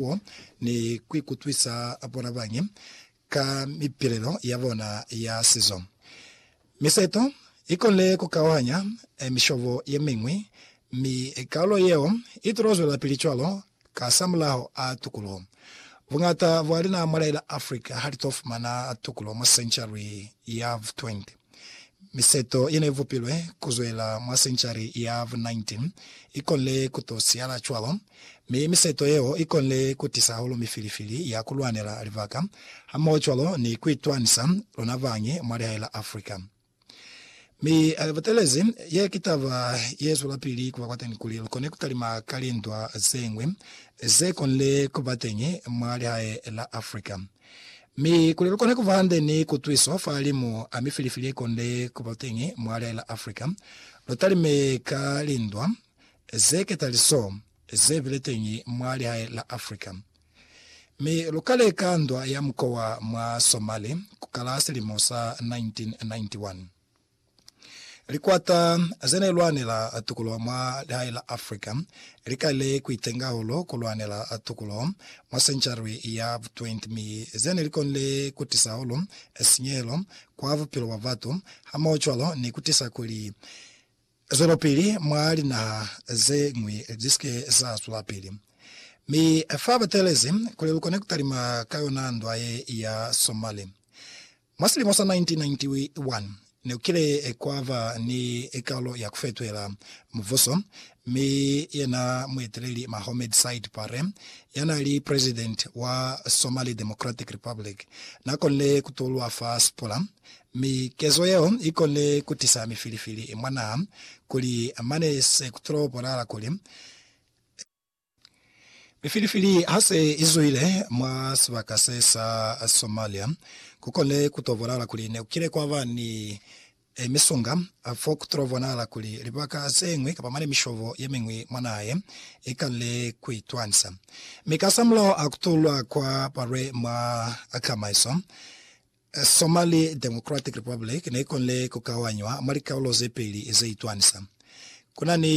bo ni kuikutwisa bonabañi ka mipilelo yabona ya sizo. Miseto ikonile kukauhanya mishobo yemiñwi, mi kaulo yeo itulo zwelapili cwalo kasamulaho a tukuluho. Buñata bwa lina mwa la Afrika halitofumana tukulo mwa century ya 20. Miseto ye ne i vupilwe ku zwela mwa senchari ya vu 19 i konile ku to siyala cwalo, mi miseto yeo i konile ku tisa hahulu mifilifili ya ku lwanela libaka hamohocwalo ni ku itwanisa luna bañi mwa lihae la Africa. Mi butelezi, ye ki taba ye zwelapili ku ba kwateni kuli lu kone ku talima ka lindwa ze ñwi ze konile ku ba teñi mwa lihae la Africa. Mi kuli lukone kuba hande ni kutwiso fa limu a mifilifili yekonde kuba teñi mwa lia la Africa, lutalime ka lindwa zeketaliso zebile teñi mwa lihae la Africa. Mi lukale ka ndwa ya mukowa mwa Somali kukala silimo sa 1991. Likwata ze ne lwanela tukulo mwa lihae la Africa li kalile ku itenga hahulu ku lwanela tukulo mwa senchari ya vu 20 mi ze ne li konile ku tisa hahulu sinyehelo kwa bupilo bwa batu hamaho-cwalo ni ku tisa kuli zwelopili mwa linaha ze ñwi li si ke za zwelapili. Mi fa ba teelezi kuli lu kone ku talima ka yona ndwa ye ya Somali, Mwa silimo sa 1991, ne ku kile kwa ba ni kalo ya ku fetwela mubuso, mi yena mueteleli Mahomed Said Barre, ya n'a li presidenti wa Somali Democratic Republic, n'a konile ku tulwa fa sipula, mi kezo yeo i konile ku tisa mifilifili mwa naha kuli mane se ku tulo bonala kuli Mifilifili ha se i zwile mwa sibaka se sa Somalia, ku kone ku to bonahala kuli ne ku kile kwa ba ni misunga. Fo ku to bonahala kuli libaka ze ñwi kapa mane mishobo ye miñwi mwa naha ye, i kanile ku itwanisa. Mi kasamulaho ha ku tulwa kwa balwe mwa kamaiso, Somali Democratic Republic ne i konile ku kauanywa mwa likarolo ze peli ze itwanisa. Ku na ni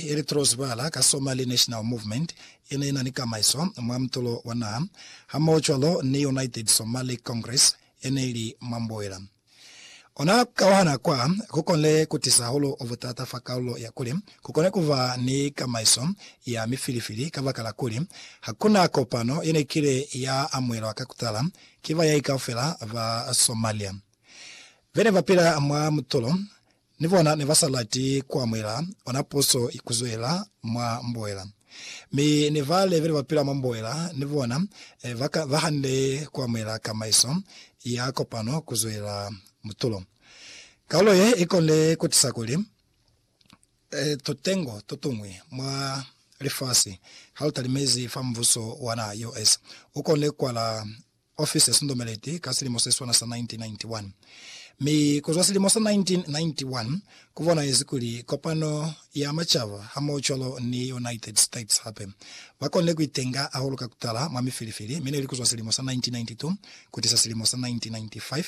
ye li tolozwibala ka Somali National Movement ye ne i na ni kamaiso mwa mutulo wa naha, hamohocwalo ni United Somali Congress ye ne i li mwa mboela. Ona ku kauhana kwa ku konile ku tisa hahulu butata fa kalulo ya kuli ku kone ku ba ni kamaiso ya mifilifili kabakala kuli ha ku na kopano ye ne kile ya amuhelwa ka ku tala Ki bayai kaufela ba Somalia bene bapila mwa mutulo, ni bona nebasalati kuamuhela ona puso kuzwelela mwa mboela. Mi ni bale bene bapila mwa mboela ni bona bahande kuamuhela kamaiso ya kopano kuzwelela mutulo. Kaulo ye ikonile kutisa kuli. e, tutengo tutuñwi mwa lifasi ha lu talimezi fa mbuso wa naha ya US. U kone kwala ofisi ya Sundomeleti ka silimo se swana sa 1991. Mi kuzwa silimo sa 1991, ku bonahezi kuli Kopano ya Macaba hamohocwalo ni United States hape, ba konile ku itenga hahulu ka kutala mwa mifilifili, mi neli kuzwa silimo sa 1992 Kutisa silimo sa 1995,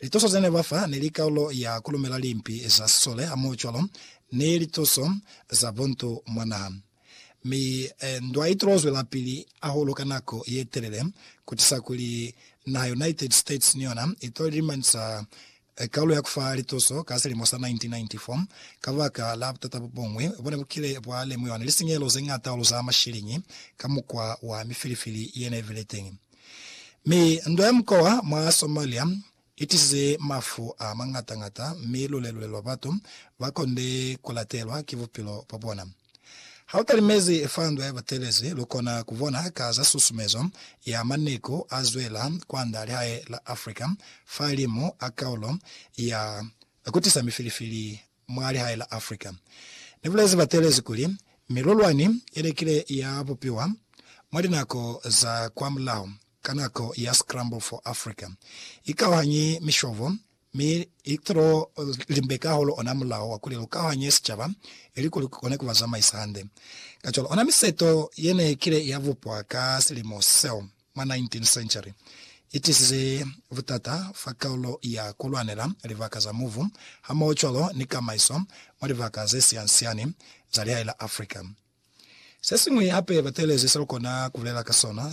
lituso zene ba fa neli kaulo ya kulumela limpi za sisole hamohocwalo ni lituso za buntu mwa naha. Mi ndwa itulo zwelapili ahulu ka nako yetelele, kutisa kuli naha United States ni yona itoli limanisa e kalu ya kufa lituso ka silimo sa 1994. Kabaka la butata bubuñwi bo ne bu kile bwa lemuiwa ni lisinyehelo ze ñata hahulu za mashiliñi ka mukwa wa mifilifili ye ne bile teñi, mi ndwa ya mukwa wa mwa Somalia i tisize mafu a mañata-ñata mi lulelule lwa batu ba konde ku latelwa ki bupilo bwa bona. Ha u talimezi fa ndwa ya butelezi, lu kona ku bona ka za susumezo ya maneku a zwela kwand'a lihae la Africa fa limu a kaulo ya ku tisa mifilifili mwa lihae la Africa. Ni bulezi batelezi kuli, Milulwani ye lekile ya bupiwa mwa linako za kwamulaho ka nako ya Scramble for Africa. I kauhanyi mishobo Mi i to limbeka hahulu ona mulao wa kuli lu kauhanye sicaba ilikuli lu kone ku ba zamaisa hande. Kacwalo, ona miseto ye ne i kile ya bupwa ka silimo seo mwa 19 century i tisize butata fa kaulo ya ku lwanela libaka za mubu hamohocwalo ni kamaiso mwa libaka ze sian-siani za lihai la Africa. Se siñwi hape batelezi se lu kona ku bulela ka sona